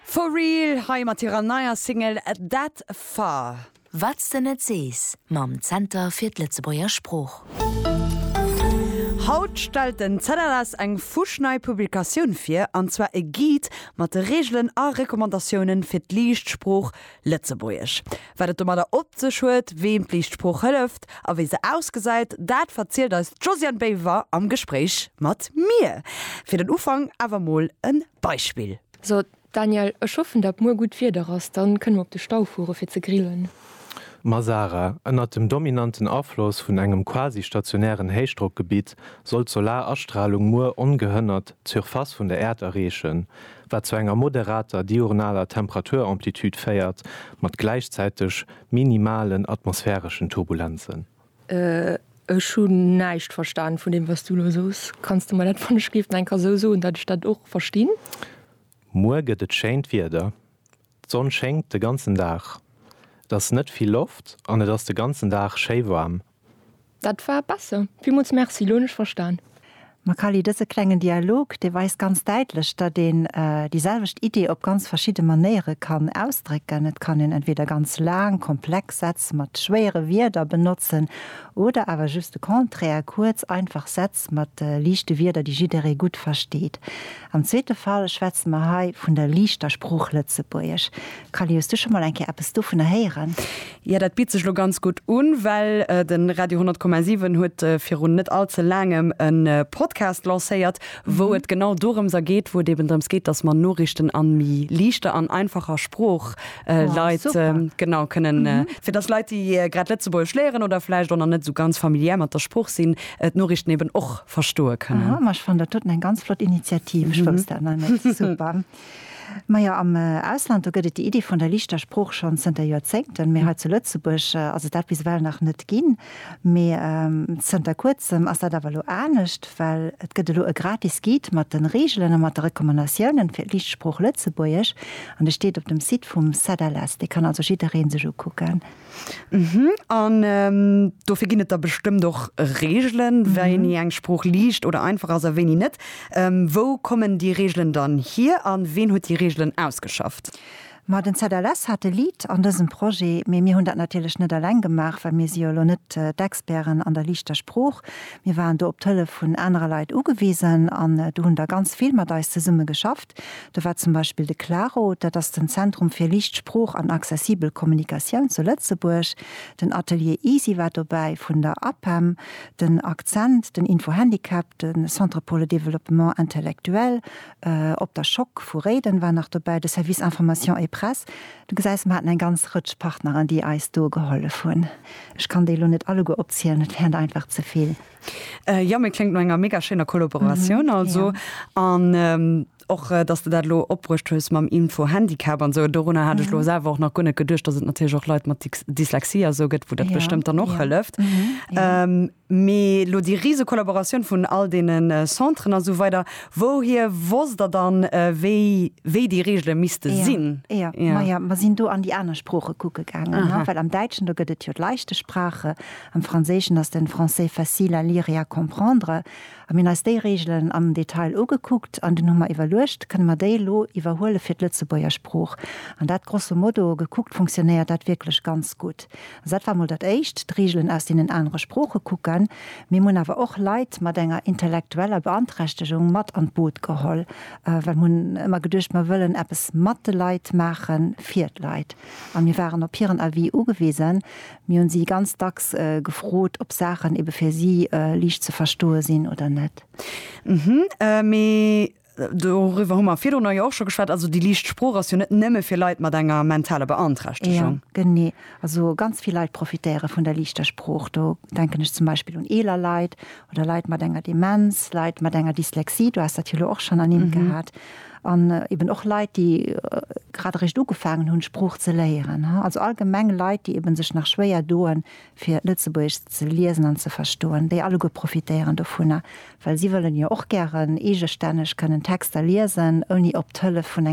For Real hei mat hirer neier Single That Far. Wat's de net sees mam Zenter fir d'Lëtzebuerger Sprooch. Haut stellt den ZLS eng fuschnei Publikatioun vir, an zwar e Guide mat de Reegelen a Recommandatiounen fir d'liicht Sprooch Lëtzebuergesch. Wat et domadder op sech huet, weem d'Lichtsprooch hëlleft a wéi se ausgesäit, dat verzielt eis d'Josiane Baever am Gespréich mat mir. Fir den Ufank awer mol e Beispill. So Daniel, ech hoffen dat muer gutt Wieder ass, dann kënne mer op de Stau fuere fir ze grillen. Ma Sarah, ënnert dem dominanten Afloss vun engem quasi-stationären Héichdrockgebitt soll d'Solarastralung muer ongehënnert d'Surface vun der Äerd erreechen. wat zu enger moderater diurnaler Temperaturamplitude féiert, mat gläichzäiteg minimalen atmosphäreschen Turbulenzen. Ech hun näischt verstan vun dem was du lo soos. Kanns de mer dat wann ech géif enker sou soen dat ech dat och verstinn? Muer gëtt et schéint Wieder, d'Sonn schéngt de ganzen Dag, et ass net vill Loft an et ass de ganzen Dag schéi waarm. Dat war besser. Villmools Merci, elo hunn ech verstan. Makali, dëse klengen Dialog, dee weist ganz däitlech, datt een déi selwecht Idee op ganz verschidde Manéiere kann ausdrécken. Et kann een entweeder ganz laang, komplex Sätz mat schwéiere Wierder benotzen oder awer just de Contraire, kuerz, einfach Sätz mat liichte Wierder, déi jidderee gutt versteet. Am zweete Fall schwätze mer hei vun der liichter Sprooch Lëtzebuergesch. Callie, hues du scho mol eng Kéier eppes dovunner héieren? Jo, dat bitt sech lo ganz gutt un, well den Radio 100,7 huet virun net all ze laangem en Podcast lancéiert, wou et genau dorëms a geet, wou et eben drëms geet, dass mer Noriichten an méi liichter an einfacher Sprooch Leit genau kënnen, fir dass Leit, déi grad Lëtzebuergesch léieren oder vläicht och nach net esou ganz familiär mat der Sprooch sinn, d'Noriichten eben och. verstoe kënnen. Aha, ma ech fannen dat doten eng ganz flott Initiativ, ech wousst dat nach net. Super. Ma jo, am Ausland, do gëtt et déi Iddi vun der lichter Sprooch schonn zënter Joerzéngten, mee hei zu Lëtzebuerg ass et dat bis ewell nach net ginn. Mee zënter kuerzem ass dat awer elo anescht, well et gëtt elo e gratis Guide mat de Reegelen a mat de Recommandatiounen fir d'licht Sprooch Lëtzebuergesch an dee steet op dem Site vum CEDALS. Dee kann also jidderee sech ukucken. Mhm. An ähm, dofir ginn et da bestëmmt och Regeln, mhm. wéini eng Sprooch liicht oder einfach ass a wéini net. Ähm, wou kommen déi Regeln dann hier an ween huet déi Regeln ausgeschafft? Ma den ZLS hat e Lead an dësem Projet, mee mir hunn dat natierlech net alleng gemaach, well mir si jo elo net äh, d'Experten an der liichter Sprooch. Mir waren do op d'Hëllef vun anerer Leit ugewisen an äh, do hunn der ganz vill mat eis zesumme geschafft. Projekt. Do war zum Beispill de Claro, dat ass den Zentrum fir liicht Sprooch an accessibel Kommunikatioun zu Lëtzebuerg, den Atelier Easy war dobäi vun der APEM, den Accent, den Info Handicap, de Centre pour le développement intellectuel op der Schock vu Réiden war nach dobäi, de Service information et presse. Du gesäis, mer haten eng ganz Rëtsch Partneren, déi eis do gehollef hunn. Ech kann déi elo net alleguer opzielen, dat wär einfach ze vill. Jo, mir kléngt no enger mega schéiner Kollaboratioun also. An och, dass de dat elo opbruecht hues mam Info-Handicap an esou. Dorunner hat ech elo selwer och nach guer net geduecht, dass et natierlech och Leit mat Dyslexie a sou gëtt, wou dat bestëmmt dann och hëlleft. Mee elo déi rise Kollaboratioun vun all deene Centren a sou weider, wouhier wosst Der dann, wéi, wéi déi Reegele misste sinn? Jo, majo, mer sinn do an déi aner Sprooche kucke gaangen, well am Däitschen, do gëtt et jo d'Leichte Sprache Am Franséischen ass den Français facile à lire et à comprendre. A mir hunn eis déi Reegelen am Detail ugekuckt an dunn hu mer iwwerluecht, Kënne mer déi elo iwwerhuele fir d'Lëtzebuerger Sprooch? An dat grosso modo gekuckt funktionéiert dat wierklech ganz gutt. Also dat war mol dat Éischt, d'Reegelen aus deenen anere Sprooche kucken. Mee mir hunn awer och Leit mat enger intellektueller Beanträchtegung mat an d'Boot geholl, well mir hunn ëmmer geduecht, mer wëllen eppes mat de Leit maachen, fir d'Leit. A mir waren op hiren Avis ugewisen. Mir hunn si ganz dacks gefrot, ob Saachen ebe fir si liicht ze verstoe sinn oder net. Hm, mee doriwwer hu mer virdrunner jo och scho geschwat. Also déi liicht Sprooch ass jo net nëmme fir Leit mat enger mentaler Beanträchtegung. Jo, genee. Also ganz vill Leit profitéiere vun der liichter Sprooch. Do denken ech zum Beispill un eeler Leit oder Leit mat enger Demenz, Leit mat enger Dyslexie, du has dat jo elo och schonn ernimmt gehat. An eben och Leit, déi grad eréischt ugefaangen hunn, d'Sprooch ze léieren. Also allgemeng Leit, déi eben sech nach schwéier doen, fir Lëtzebuergesch ze liesen an ze verstoen, déi alleguer profitéieren dovunner, well si wëllen jo och gären eegestänneg kënnen Texter liesen, ouni op d'Hëllef vun.